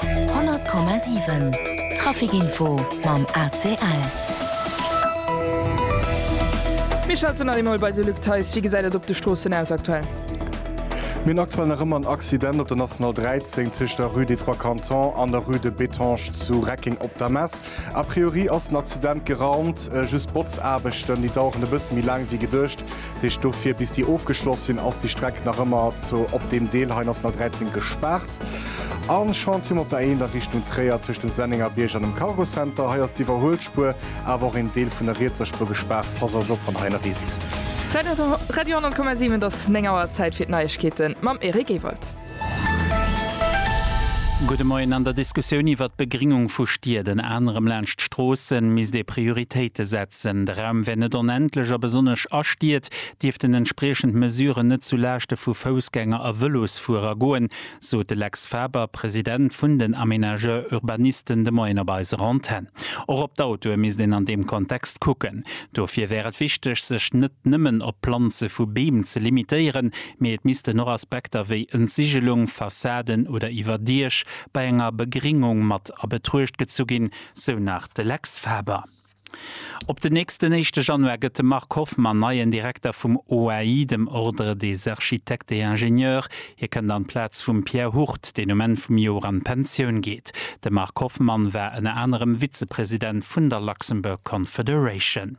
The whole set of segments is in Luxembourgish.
100,7 Trafic Info mam ACL. Mir schalten nach eemol bei de Luc Theis. Wéi gesäit et op de Stroossen aus aktuell? Mir hunn aktuell nach ëmmer en Accident op der National 13 tëscht der Rue des Trois Cantons an der Rue de Bethange zu Reckeng op der Mess. A priori ass den Accident geraumt, just d'Botzaarbechten, déi daueren e bësse méi laang wéi geduecht. Dat heescht, dofir bis déi ofgeschloss sinn, ass déi Streck nach ëmmer zu, op deem Deel hei, National 13 gespaart. A Chantier um op der A1 a Richtung Tréier, tëscht dem Sennengerbierg an dem Cargo Center. Hei ass d'Iwwerhuelspuer, awer och een Deel vun der rietser Spuer gespaart. Pass also op, wann hei ënnerwee sidd. Radio 100,7 Et ass 9 Auer, Zäit fir d'Neiegkeete mam Eric Ewald. Gudde Moien. An der Diskussioun iwwert d'Begringung vu Stied, ënner anerem laanscht d'Stroossen, misst ee Prioritéite setzen. De Raum wär net onendlech a besonnesch a Stied dierften entspriechend Mesuren net zu Laaschte vu Foussgänger a Vëlosfuerer goen, sot de Lex Faber, President vun den Aménageurs Urbanisten de Moien op eiser Antenn. Och op d'Autoe misst een an deem Kontext kucken. Dofir wär et wichteg, sech net nëmmen op d'Planze vu Beem ze limitéieren, Mee et missten och Aspekter wéi Entsigelung, Fassaden oder Iwwerdiech bei enger Begringung mat a Betruecht gezu ginn, sou nach de Lex Faber. Op den nächsten éischte Januar gëtt de Marc Hoffmann neien Direkter vum OAI, dem Ordre des Architectes et Ingénieurs. Hie kënnt an d'Plaz vum Pierre Hurt, deen um Enn vum Joer an d'Pensioun geet. De Marc Hoffmann war ënner anerem Vizepresident vun der Luxembourg Confederation.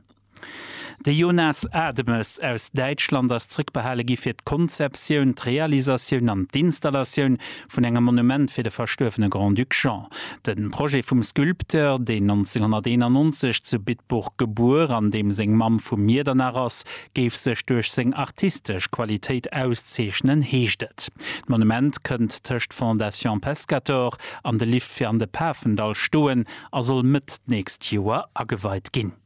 De Jonas Ademes aus Däitschland ass zréckbehale gi fir d'Konzeptioun, d'Realisatioun an d'Installatioun vun engem Monument fir de verstuerwene Grand-Duc Jean. De Projet vum Sculpteur, deen 1991 zu Bitburg gebuer an deem seng Mamm vu Miedernach ass, géif sech duerch seng artistesch Qualitéit auszeechnen, heescht et. D'Monument kënnt tëscht Fondation Pescator an de Lift fir an de Pafendall stoen a soll Mëtt d'nächst Joer ageweit ginn.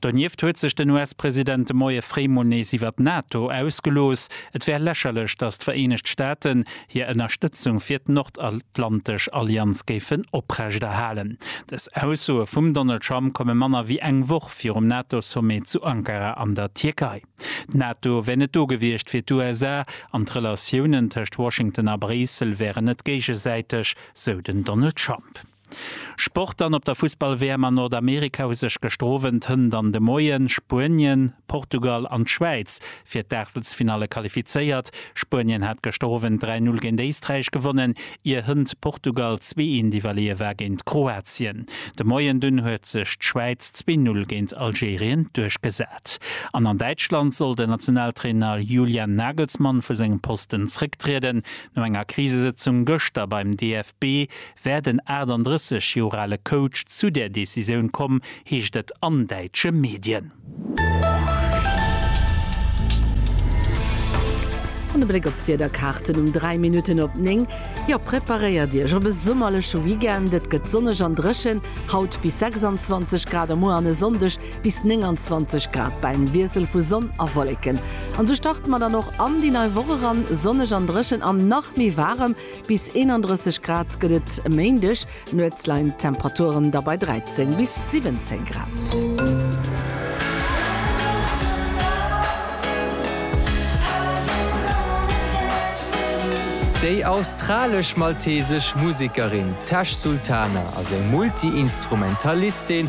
Donieft huet sech den US-President de Moie fréi mol nees iwwert d'NATO ausgelooss. Et wär lächerlech, datt d'Vereenegt Staaten hir Ënnerstëtzung fir d'Nordatlantesch Allianz géifen oprechterhalen. Dës Aussoe vum Donald Trump komme manner wéi eng Woch virum NATO-Sommet zu Ankara an der Tierkei. D'NATO wär net do gewiescht fir d'USA an d'Relatiounen tëscht Washington a Bréissel wären net géigesäiteg, sou den Donald Trump. Sport an op der Fussball-WM an Nordamerika hu sech gëschter Owend, Hënt an de Moien, Spuenien, Portugal an d'Schwäiz fir d'Aachtelsfinalle qualifizéiert. Spuenien hat gëschter Owend 3, 0 géint Éisträich gewonnen, ier Hënt Portugal zwee, 1 iwwerleeë war géint Kroatien. De Moien dunn huet sech d'Schwäiz zwee, 0 géint Algerien duerchgesat. An an Däitschland soll den Nationaltrainer Julian Nagelsmann vu sengem Posten zrécktrieden. No enger Krisesëtzung gëschter beim DFB wär den 38 Joer ale Coach zu där Decisioun komm, heescht et an däitsche Medien. An e Bléck op d'Wiederkaarten um 3 Minutten op 9. Jo, preparéiert Iech op e summerleche Weekend, et gëtt sonneg an dréchen, haut bis 26 Grad a muer an e Sonndeg bis 29 Grad bei engem Wiessel vu Sonn a Wolleken. An esou starte mer dann och an déi nei Woch eran, sonneg an dréchen an nach méi waarem. Bis 31 Grad gëtt et e Méindeg, nuets leien d'Temperaturen da bei 13 bis 17 Grad. Déi australesch-maltesesch Musekerin Tash Sultana ass eng Multi-Instrumentalistin,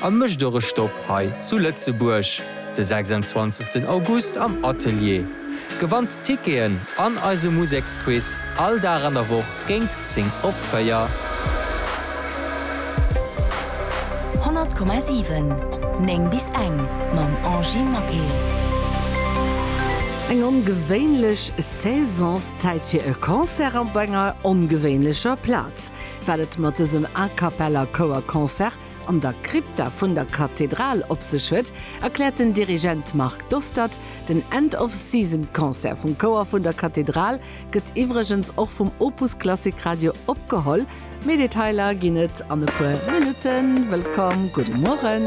A mécht och e Stopp hei zu Lëtzebuerg de 26 August am Atelier. Gewannt Ticketen an eise Museksquiz all Dag an der Woch géint 10 op 4. 100,7 9 bis eng mam Angy Maquet. Eng ongewéinlech Saisonszäit fir e Concert an op enger ongewéinlecher Plaz. Wat et mat dësem A-Cappella-Chouer-Concert an der Krypta vun der Kathedral op sech huet, erkläert den Dirigent Marc Dostert. Den End of Season Concert vum Chouer vun der Kathedral gëtt iwwregens och vum Opus Klassik Radio opgeholl. Méi Detailer ginn et an e puer Minutten. Wëllkomm, gudde Mueren.